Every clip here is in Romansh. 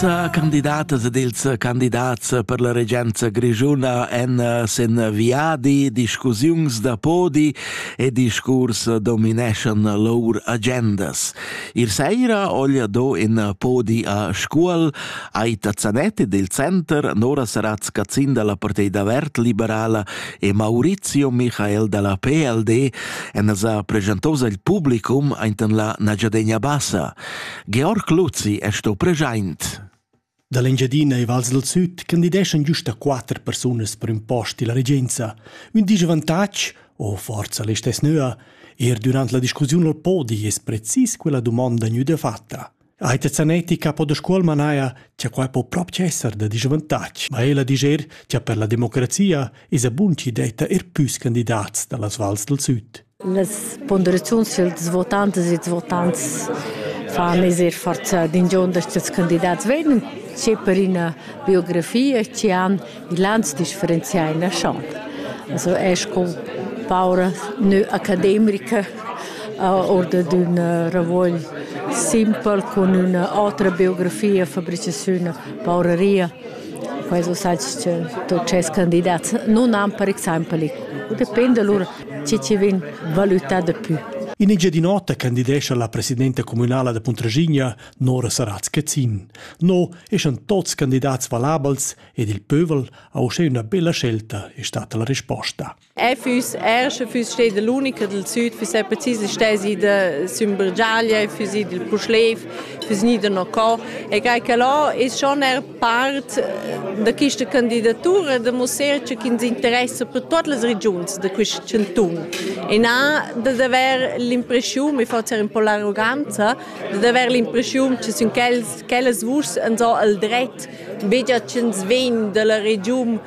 candidatas ed ils candidats per la regenza grischuna en sen viadi, discussiuns da podi e discurs domineschan lur agendas. Ir saira oglia do in podi a Scuol, Aita Zanetti del Center, Nora Saratz Cazzin dalla Partei da Vert Liberala e Maurizio Michael dalla PLD en sa pregentosa il publicum ainten la Nagiadegna Bassa. Georg Luzzi è sto present. Da l'Engiadina e Vals del Süd candideschan giusta quatter persunas per un post della regenza. Un disavantatg, o forza l'estess nöa, er durant la discussiun al podi es precis quella domanda gnüda fatta. Aita Zanetti capo da scuol manaia cha quai po proprio esser da disavantatg, ma ella diger cha per la democrazia es a bun chi detta er püs candidats da las vals del süd. Las ponderaziuns dals votantas e dals votants fan eser forza d'ingiond da stats candidats vegnan che per ina biografia che han il ans differenzià in champ. Also è sco paura nö academica oder d'ün ravogl simpel cun üna otra biografia, fabricaziun, pauraria. Quai so sagst che tuot tschels candidats nun han per exaimpel, dependa lur chi chi vegn valütà dapü. In Engiadin'Ota candidescha la presidenta communala da Puntraschigna, Nora Saratz-Cazin. No eschan tuots candidats valabels ed il pövel ha uschè üna bella scelta, è stata la risposta. E füs ersch, füs steda l'unica del süd, füs è precis stesi da Sümbergiaglia, füs id il Puschlev, füs gnida no co. E crei che lo es schon er Part da questa candidatura demussescha ch'ins interessa per tut las regiuns da quest chantun. E na da haver l'impressiun, mi forza in po l'arroganza, da haver l'impressiun che sin quellas vuschs ans ho el dret begia ch'ins vegn dalla regiun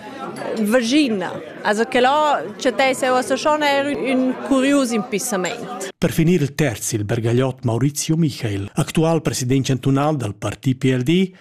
Vagina. Also che là chattess eu a Saschon er un curius impissament. Per finir il terz il bergagliot Maurizio Michael, actual president chantunal dal parti PLD,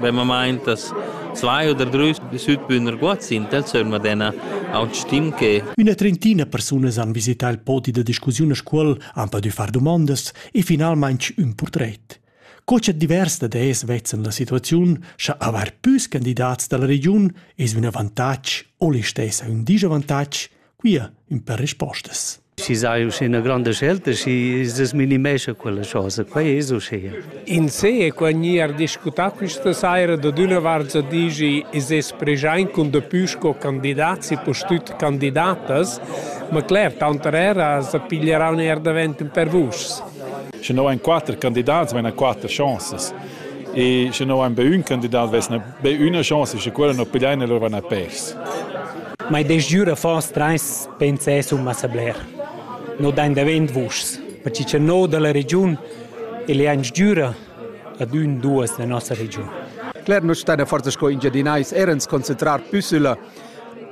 vemamain das zwei oder drei Südbühner Guads sind el sömma dena aut stim che Üna trentina persunas han visità il podi da discussiun a Scuol, han pudü far domandas e finalmaing ün purtret. Co cha divers da des vezzan la situaziun, scha avair püs candidats da la regiun es ün avantatg o listess ün disavantatg, Quia ün per rispostas. Si sai uschè grande scelta, si se minimescha quella cosa, quai es uschè. In se e qua gnir discutà questa saira da d'üna vart za digi es es preschaint cun dapü sco candidats e postüt candidatas, ma cler, tanter era sa piglieran eir davent ün per vuschs. Sche no ein quatter candidats, vegna quatter chanzas. E sche no ein be ün candidat, vess Be üna chaussa che quella non pigliain e lura van a pers. Ma id es giür affons trais pensès un massa bler. No dain davent vuschs, perche cha no da la regiun il e ans giüra ad ün duos da nossa regiun. Cler, nus stain a forza sco Engiadinais erens concentrar püssüla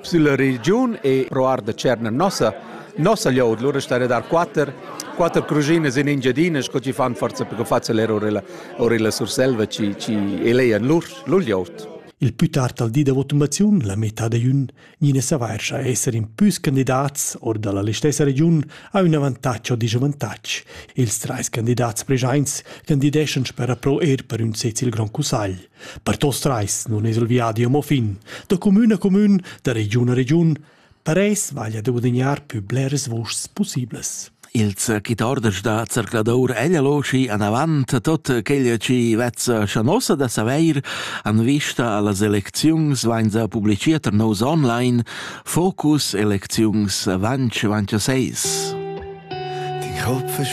Sulla regiun e proar da Tscherna nossa nossa glioud lura star a dar quatter quatter cruginas in Engiadina sco chi fan forza per fazer orilla orilla Surselva chi chi elean lur lur glioud. Il pü tard al di da votumaziun, la metà da jun, gnina savarscha esser in püs candidats or dalla listessa regiun ha ün avantatg o disavantatg. Ils trais candidats preschaints candideschan per appro eir per ün sez il Grand Cussagl. Per tos trais nun es il viadi amo fin, da cumün a cumün, da regiun a regiun, per eis vaglia da guadagnar pü bleras vuschs pussiblas. Il circuitorder da zercladur Eglialoschi anavant tot quel chi vezza schanossa da savair an vista a las elecziuns vainza publiciert er nos online Focus Elecziuns Vanch Vanch 6. Die Kopf ist